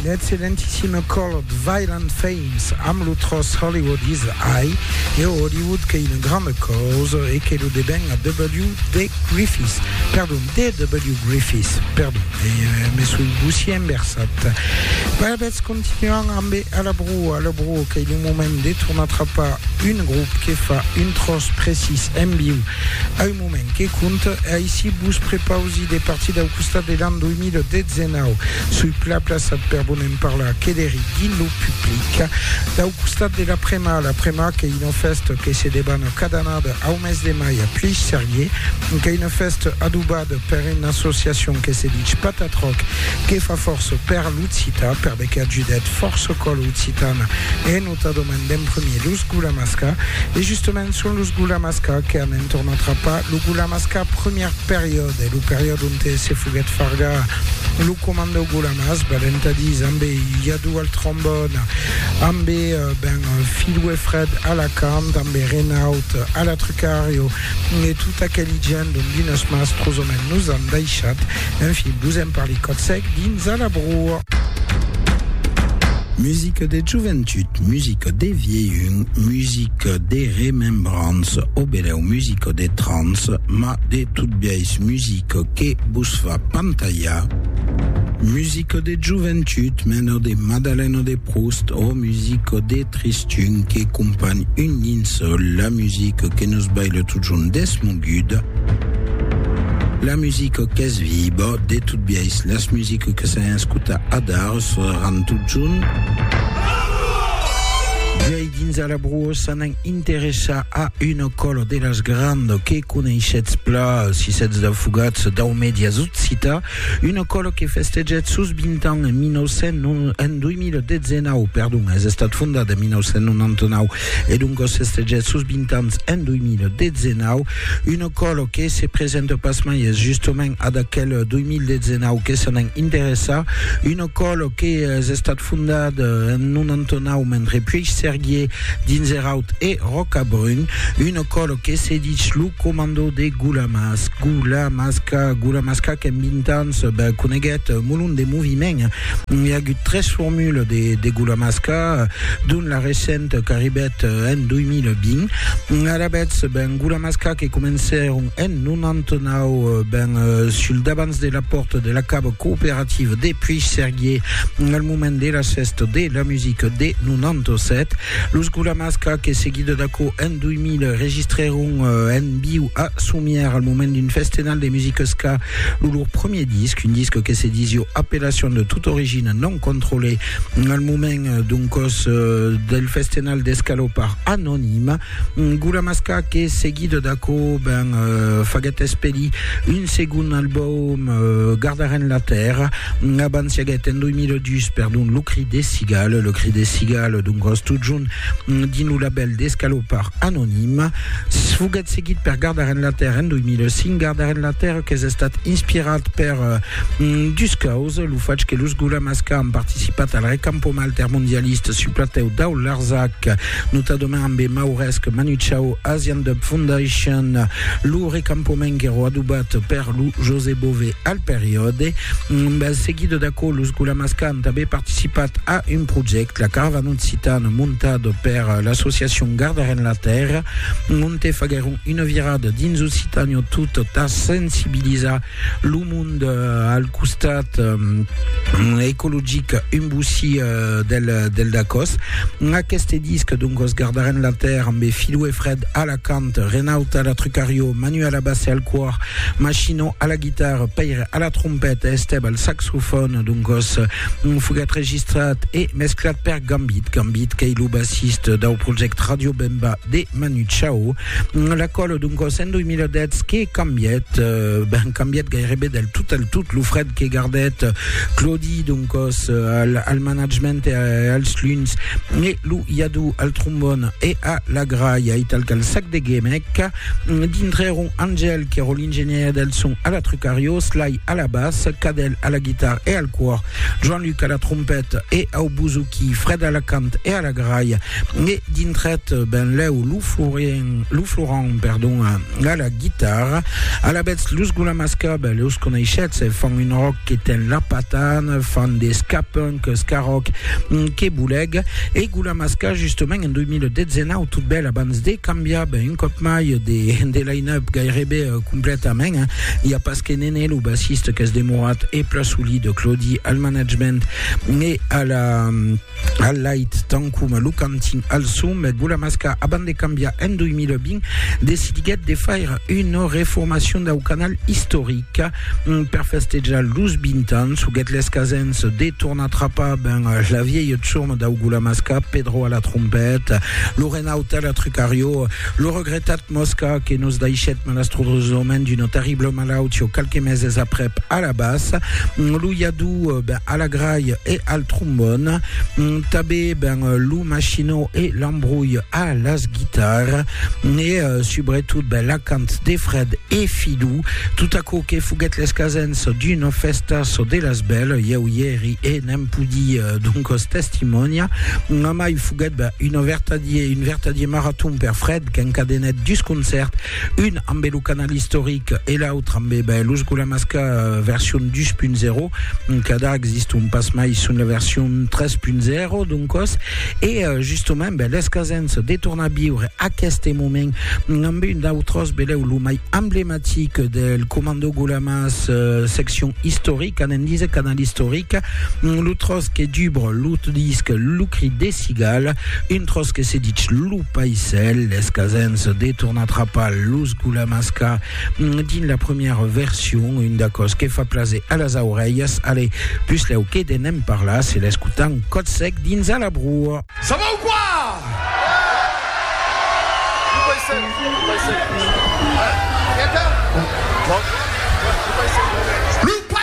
Un excellentissime colh Violent Femmes amb lo tròç Hollywood is High e Hollywood qu'ei una granda causa e que lo deben a WD Griffiths, perdon, DW Griffiths, perdon, me soi bossier enversat. Pas abetz continuam ambe A la Brua, A la Brua qu'ei lo moment de tornar trapar un grop que fa un tròç precís en viu, Moment que compte, aicí vos prepausi de partir dau costat de l'an 2019. Soi plaplaçat per bonem parlar que deri dins lo public. Dau costat de l'Aprema, l'Aprema qu'ei una fèsta que se debana cada annada au mes de mai a Pleix-Serrier, qu'ei una fèsta adobada per una associacion que se ditz Patatroc, que fa fòrça per l'occitan, perbe qu'ajudèt fòrça còla occitana en. Tota domandem premier los Gula Masca e justament son los Gula Masca que an entornat Rapa, lo Gula Masca premier periòde, lo periòde onte se foguèt fargar lo comandau Gula Mas, val entà dis ambe Yadou al trombòn, ambe ben Filou e Fred a la cant, ambe Renaut a la trucario, e tot aqueli gent dont d'unes mas trosament nos an daishat, enfin vos en parli còth sec dins a la broa. Musica de joventut, musica de vielhun, musica de remembrança, o benèu musica de trans, ma de tot biais musica que vos fa pantalhar. Musica de joventut, mena de Madalena de Proust, o musica de tristura, Tun que companh un dins la musica que nos baila totjorn desmoguda, la musica qu'es viba, de tot biais las musica que s'an escuta adar seràn totjorn. Viei dins a la broa s'anan interessar a una cola de las granda que coneishetz pla, si setz daufugats dau medias occitan, Una còla que festejèt sos 20 ans en 2019, perdon, es estat fondat en 1999 e doncas festejèt sos 20 ans en 2019, una còla que se presenta pasmai es justament ad aquel 2019 que se n'en interessa, una còla que es estat fondat en 99 mentre Puigsèrguier, Dinzeraut e Rocabrun, una còla que se ditz lo comandò de Gulamas, Gula Masca, Gula Masca qu'en 20 ans ben, coneguèt molon de moviment. Hi a agut tres formules de, de Gula Masca, dont la recente qu'arribèt en 2020. Alavetz, ben, Gula Masca que comencèron en 99 ben, sul davants de la pòrta de la cava cooperativa de Puigcerguier al moment de la fèsta de la musica de 97. Los Gula Masca que seguida d'aquò en 2000 2000 le registrèron en viu a Somièr al moment d'un festenal de musica ska, lo lor premier disc, un disc que se disio Appellation de toute origine non contrôlée al moment d'un còs del festenal d'escalopar anonime. Gulamasca que seguit d'aquò ben faguèt espedir un segond album Gardarem la Terra abans siaguèt en 2002 perdon Lo Cri des Cigales, Le Cri des Cigales, d'un còs totjorn dins lo labèl d'escalopard anonim, foguèt seguit per Gardar Enlatèrra en 2005, Gardar Enlatèrra qu'es estat inspirat per dus causas, lo fach que los Gulamasca an participat al recampoma altermondialista sul platèu dau Larzac, notadament amb e mauresc Manu Chao Asian Dub Foundation, lo recampoma enguèro adobat per lo José Bové. al periòde. Seguido d'aquò, los Gulamascan tanben participat a un projècte, la Caravana Occitana, montat per l'associacion Gardarem la Tèrra, onte faguèron una virada dins Occitània tot a sensibilizar lo mond al costat ecologic un bossí del Dacòs. Aqueste disc, doncas, Gardarem la Tèrra, ambe Filou e Fred a la cant, Renaud a l'atrucariò, Manu a la bassa e al còr, Machino a la guitarra, Pèire a la trompeta e Estèb al saxofòn. D'un còs, foguèt registrat e mesclat per Gambit. Gambit qu'ei lo bassist dau projèct Radio Bemba de Manu Chao. La còla, d'un còs, en 2010 que cambièt, ben cambièt gairebe del tot al tot lo frèd que gardèt Claudi, d'un còs, al management e als luns. lo iadó al trombòn e a la gralha e tal qu'al sac de gemec, dintrèron Angèl, qu'èra l'ingenièr del son, a la trucariós, Lai a la bas, Cadèl a la guitarra e al còr, Joan-Luc a la trompèt e au bozoquí, Frèd a la cant e a la gralha, e dintrèt benlèu lo Florent, lo Florent, perdon, a la guitarra, alavetz los Gulamas Cub, los coneishetz, fan un rock que ten la patan, fan de ska punk, ska rock que boleg, e Gulamas Ska justement en 2019 tot bèl abans de cambiar ben un còp mai de, de line-up gairebe completament, hein. i a pas que Nene lo bassiste qu'es demorat e pla solid Claudi al management e a la al lait tant coma lo cantin al son, mès Gulamasca, abans de cambiar en 2020, decidiguèt de faire una reformacion dau canal istoric. Per festejar los 20 ans, huguèt l'escasens de tornar trapar ben la vièlha tsurma dau Gulamasca, Pedro a la trompeta, lo Renaute a la trucariò, lo regretat Mosca que nos daishèt malastrosament d'una terrible malautió qualques meses aprèp a la bas, lo iadú ben a la grai e al trombòn, tabé ben lo machinó e l'embrolh a las guitar, e subretot ben l'acant de Fred e Fidú, tot aquò que foguèt l'escasens d'una fèsta çò de las bèl, ieu i èri e n'èm pudi doncos testimònia, mai foguèt ben un vertadier maraton per Fred, qu'encadenèt dus concèrts, un ambe lo canal istoric e l'autre ambe ben, los Gulamasca euh, version 2.0, cada existon pas mai son la version 3.0 d'un còs, e euh, justament ben, l'escasens de tornar viure aqueste moment ambe un d'autres beleu lo mai emblematic del Comando Gulamas euh, seccion historique, anem dise canal historique, lo tros que dubre lo disc Lo crit des cigales, un tros que se ditz lo Paisèl, es casens de tornar trapar los gulamasca dins la premièra version, un d'aquò's que fa plaser a las aurelhas, ale, puslèu que de ne'n parlar, se l'escotan còth sec dins a la broa. Ça va ou quoi? Lo paisèl, lo paisèl. Lo paisèl.